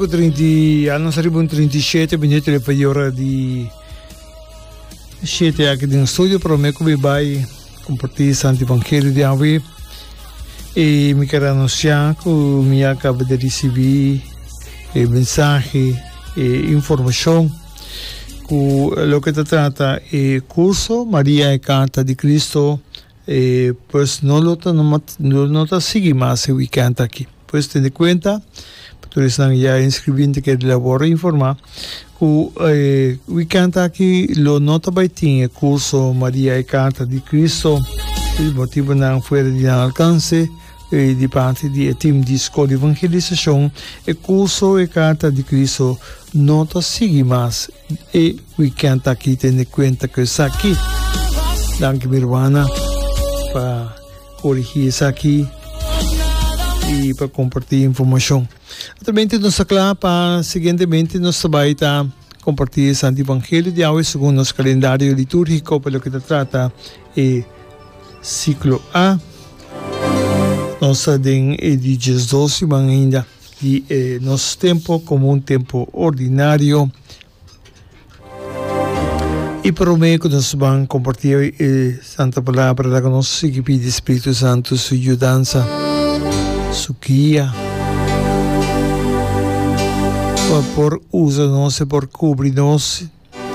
Cu trinta anos arriba un trinta y siete bini te pa llora di siete aquí din estudio pero me cu bibai compartir santo evangelio di awe y mi quiero anunciar cu mi acaba de recibir el mensaje e información cu lo que ta trata e curso Maria e carta di Cristo E pues no lo ta no ta sigui mas e weekend aki. Pues tende cuenta patronesnan ya a inscribi ente ke di labor a informa cu e weekend aki lo no ta bay tin e curso Maria e carta di Cristo. Motibonan fuera di nan alcance. Di parti di e tim di Skol di Evangelisashon, e kurso E Karta di Kristu no ta sigui mas e wikènt aki teniendo kuenta ku esaki. Danki Mirwana pa korigí esaki i pa kompartí informashon. Ato mente nos ta kla pa siguientemente nos ta bai ta. Comparti e Santo Evangelio di awe segun nos calendario litúrgico pa loke ta trata e ciclo A. Nos ta den e di diesdos siman ainda di e nos tempo como un tempo ordinario. E prome cu nos ban comparti awe e Santa Palabra ta cu nos sigui pidi Spiritu Santu su yudansa, su guia, pa por usa nos, e por cubri nos,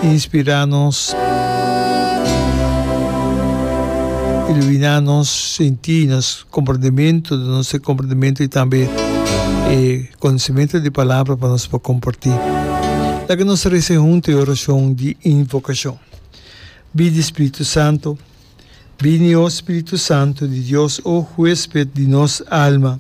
inspira nos, ilumina nos sinti, nos comprendementu, duna nos e comprendementu y tambe e conocimento di Palabra pa nos por comparti. Laga nos reza huntu e oracion di invocacion. Bidi Spiritu Santu. Bini, O Spiritu Santu di Dios, O Huesped di nos alma,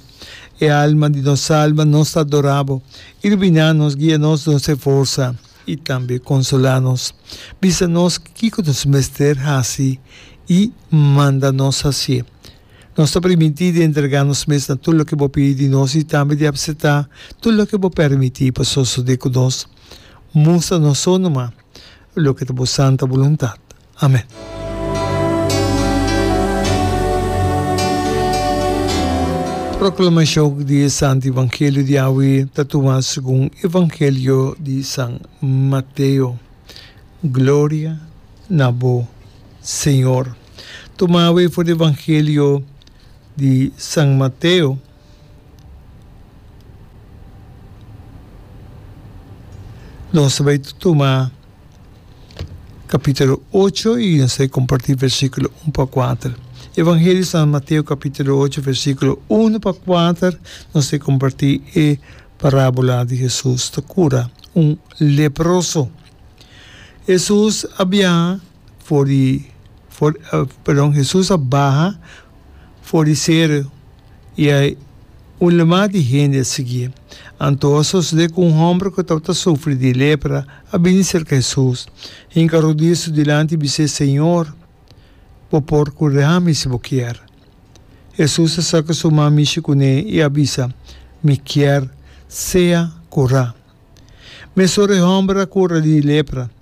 e alma di nos salba, nos ta adorá bo. Iluminá nos, guia nos, nos e forsa i tambe konsolá nos. Bisa nos kiko nos mester hasi i manda nos hasié. Nos ta primintí di entregá nos mes na tur loke bo pidi di nos i tambe di apseptá tur loke bo pèrmití pa sosodé ku nos. Mustra nos so nomá. loke ta bo santa buluntat. Amen. Proclamacion di e santi evangelio di awe ta tuma segun evangelio di San Mateo. Gloria na bo, Señor. Tuma awe for di evangelio di San Mateo. Nos ta bai tuma capitulo ocho y nos ta comparti versiculo uno pa cuater. Evangelio di San Mateo capitulo ocho versiculo uno pa cuater nos ta comparti e parabola di Jesus ta cura un leproso. Jesus a bia. for di for perdon Hesus a baha for di seru i a un lema di hende a sigui. Anto a sosode ku un hòmber ku tabata sufri di lepra a bini serka Hesus, hinka rodia su dilanti i bis'é, Señor, bo por kura mi si bo kier. Hesus a saka su man mishi kuné i a bisa, Mi kier, sea kura. Mesora e hòmber a kura di lepra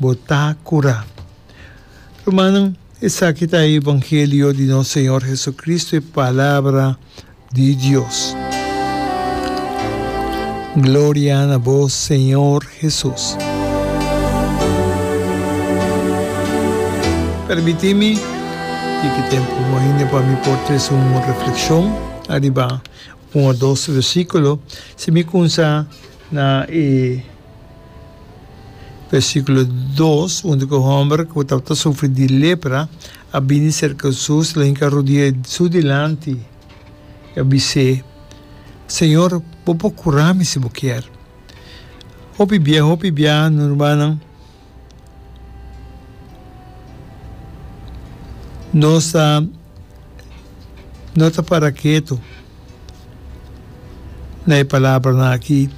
Bo ta kurá. Rumannan, esaki ta e evangelio di nos Señor Jesucristo, e Palabra di Dios. Gloria na bo, Señor Jesús. Permití mi, tin ki tempu ainda pa mi por trese un reflexion ariba. Un o dos versíkulo. Si mi kumsa na e versíkulo dos, un di ku hòmber ku tabata sufri di lepra a bini serka Hesus, el a hinka rudia Hesus dilanti, i a bis'é, Señor, bo por kura mi si bo kier. Hopi bia, hopi bia, nurmanan, Nos ta no ta para ketu na e palabranan aki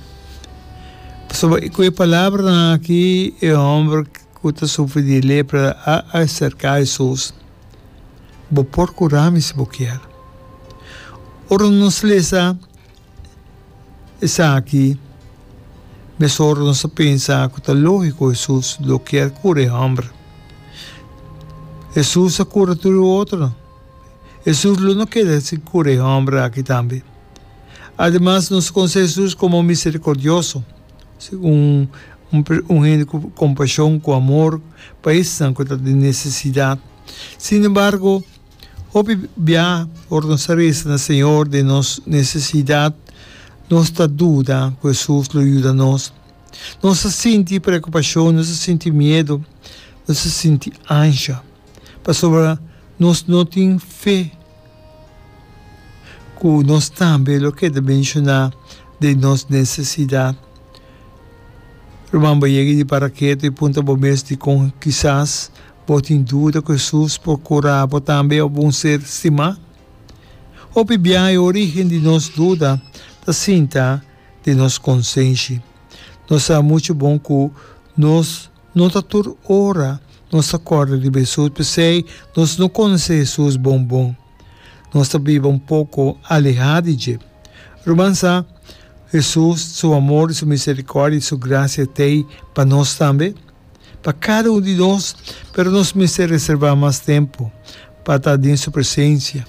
pasobra ku e palabranan aki e hòmber ku ta sufri di lepra a aserká Hesus, Bo por kurá mi si bo kier. Ora nos lesa Esaki mesora nos a pensa ku ta lógiko, Hesus lo kier kura e hòmber. Hesus a kura tur e otronan. Hesus lo no keda sin kura e hòmber aki tambe. Ademas nos a konse Hesus komo un miserikordioso, un hende ku kompashon, ku amor pa esnan ku ta den nesesidat. Sinembargo. Hopi bia, ora nos ta resa na Señor den nos necesidad, nos ta duda cu Jesús lo yuda nos. Nos a sinti preocupacion, nos a sinti miedu, nos a sinti ansha, pasobra nos no tin fe cu nos tambe lo keda menciona den nos necesidad. Rumanba yega di paraketo y punta bo mes di con kisas. Bo tin duda ku Hesus por kura bo tambe òf un ser stimá? Hopi biaha e orígen di nos duda ta sinta den nos konsenshi. Nos sa muchu bon ku nos no ta tur ora nos ta kòrda riba Hesus p'esei nos no konosé Hesus bon bon. Nos ta biba un poko alehá di dje. Ruman sa Hesus, su amor i su miserikòrdia i su grasia t'ei pa nos tambe? pa kada un di nos, pero nos mester reservá mas tempu pa ta den su presensia.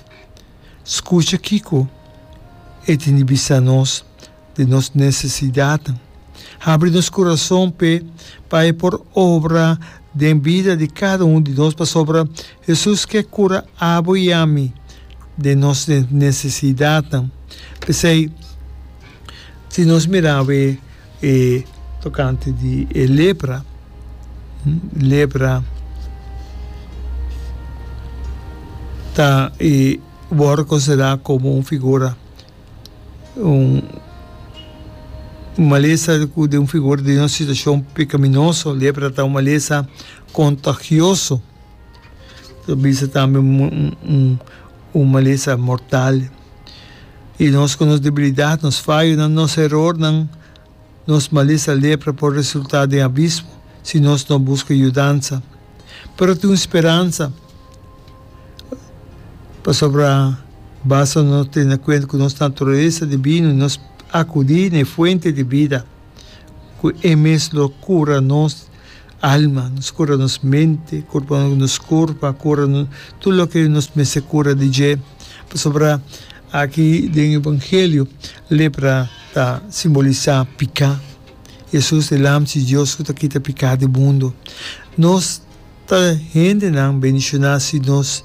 Skucha kiko e tin di bisa nos den nos nesesidatnan. Habri nos kurason p'e pa e por obra den bida di kada un di nos, pasobra Hesus ke kura abo i ami den nos nesesidatnan. P'esei, si nos mirá awe, E tokante di e lepra, lepra ta e wòrdu konsiderá komo un figura, un malesa ku den un figura di un situashon pekaminoso. Lepra ta un malesa kontagioso, ta bisa tambe un malesa mortal. I nos ku nos debilidat, nos fayonan, nos erornan, nos malis a lepra por resultá den abismo si nos no buska yudansa. Pero tin un speransa, pasobra basta nos tene kuenta ku nos naturalesa dibino i nos akudí na e Fuente di Bida ku e mes lo kura nos. Alma, nos cura nos mente, curpa nos curpa, cura nos, tur loke nos mester cura di dje, pasobra aki den evangelio lepra ta simbolisa pica, Jesus e Lam di Dios cu ta kita pica di mundo. Nos ta hendenan bendiciona si nos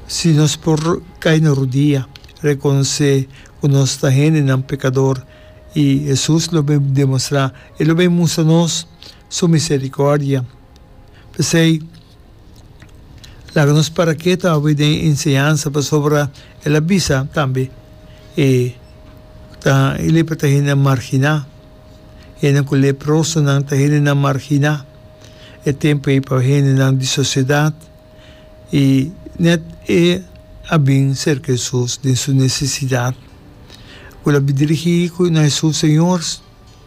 si nos por cay na rodia, reconoce cu nos ta hendenan pecador. i Hesus lo bin demostrá. E lo bin mustra nos su miserikòrdia. P'esei, laga nos para ketu awe den e enseñansa pasobra el a bisa tambe e ku ta e lepra ta hendenan marginá. Hendenan ku leprosonan ta hendenan marginá. E tempu ei pa hendenan di sosiedat. i nèt e a bin serka Hesus den su nesesidat. Ku el a dirigí na Hesus, Señor,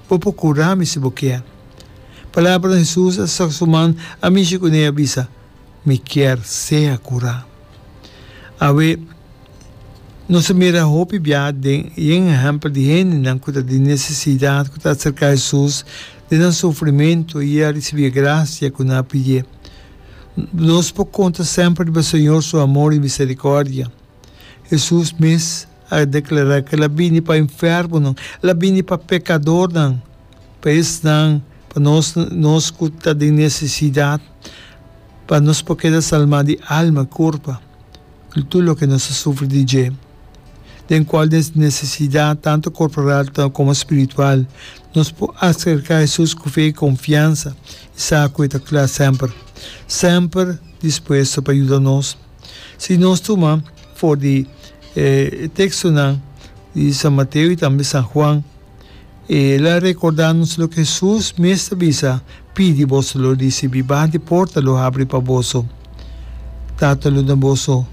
bo por kura mi si bo kier. Palabranan Hesus a sak su man a mishi kune i a bisa, Mi kier, sea kurá. Awe, nos a mira hopi bia den yen ehèmpel di hendenan ku ta den nesesidat ku ta aserká Hesus den nan sufrimentu i a risibí e grasia ku nan a pidié. Nos por conta semper di bo Señor su amor y misericordia. Jesús mes a declara cu el a bini pa enfermonan, el a bini pa pecadornan, pa esnan, pa nos, nos cu ta den necesidad, pa nos por keda salma di alma, curpa. di tur loke nos a sufri di dje, den kual nos nesesidat tantu korporal komo spiritual, nos por aserká Hesus ku fe i konfiansa i sa ku e ta kla semper semper dispuesto pa yuda nos. Si nos tuma for di e tekstonan di San Mateo i tambe San Juan, E la rekordá nos loke Hesus mes ta bisa, Pidi, boso lo risibí, bati, porta lo habri pa boso. Tata lo na boso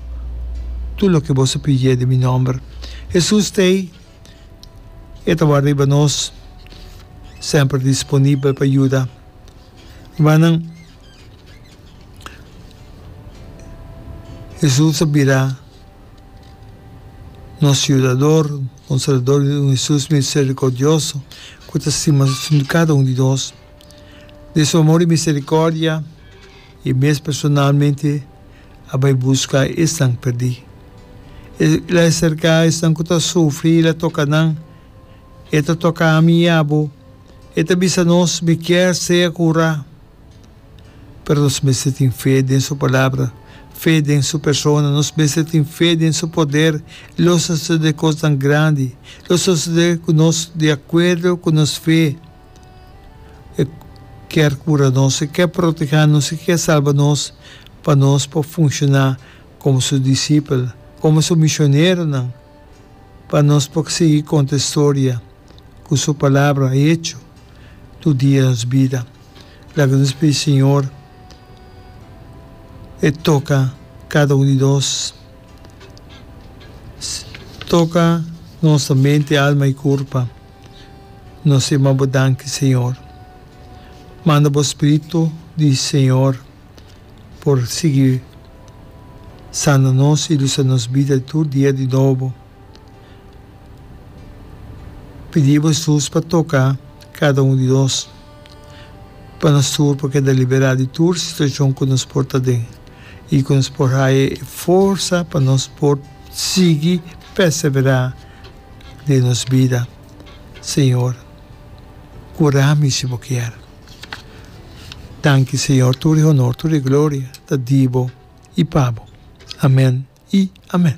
tur loke boso pidié den mi nòmber. Hesus ta ei, e ta wak riba nos, semper disponibel pa yuda. Rumannan, Hesus a bira. Nos Yudador, Konsolador i un Hesus miserikòrdioso ku ta stima kada un di nos. Den su amor i miserikòrdia, e mes personalmente a bai buska esnan pèrdí. E la e serká esnan ku ta sufri i el a toka nan. E ta toka ami i abo. E ta bisa nos, Mi kier sea kurá. Pero nos mester tin fe den su Palabra, fe den su persona. Nos mester tin fe den su poder. Lo sucede cosnan grandi. Lo sucede cu nos di acuerdo cu nos fe. E kier cura nos, e kier proteha nos, e kier salba nos pa nos por funciona como su discipel, como su misioneronan, pa nos por sigui conta e storia. ku su palabra hecho tur dia nos bida. Laga nos pidi Señor e toka kada un di nos. Toka nos na mente, alma i kurpa. Nos ta yama bo danki Señor. Manda bo Spiritu di Señor por sigui sana nos i lusa nos bida tur dia di nobo. Pidi bo Hesus pa toka kada un di nos, pa nos tur por keda liberá di tur situashon ku nos por ta den i ku nos por haya e forsa pa nos por sigui perseverá den nos bida. Señor, kura mi si bo kier. Danki, Señor, tur e honor, tur e gloria ta di bo i pa bo. Amèn i amèn.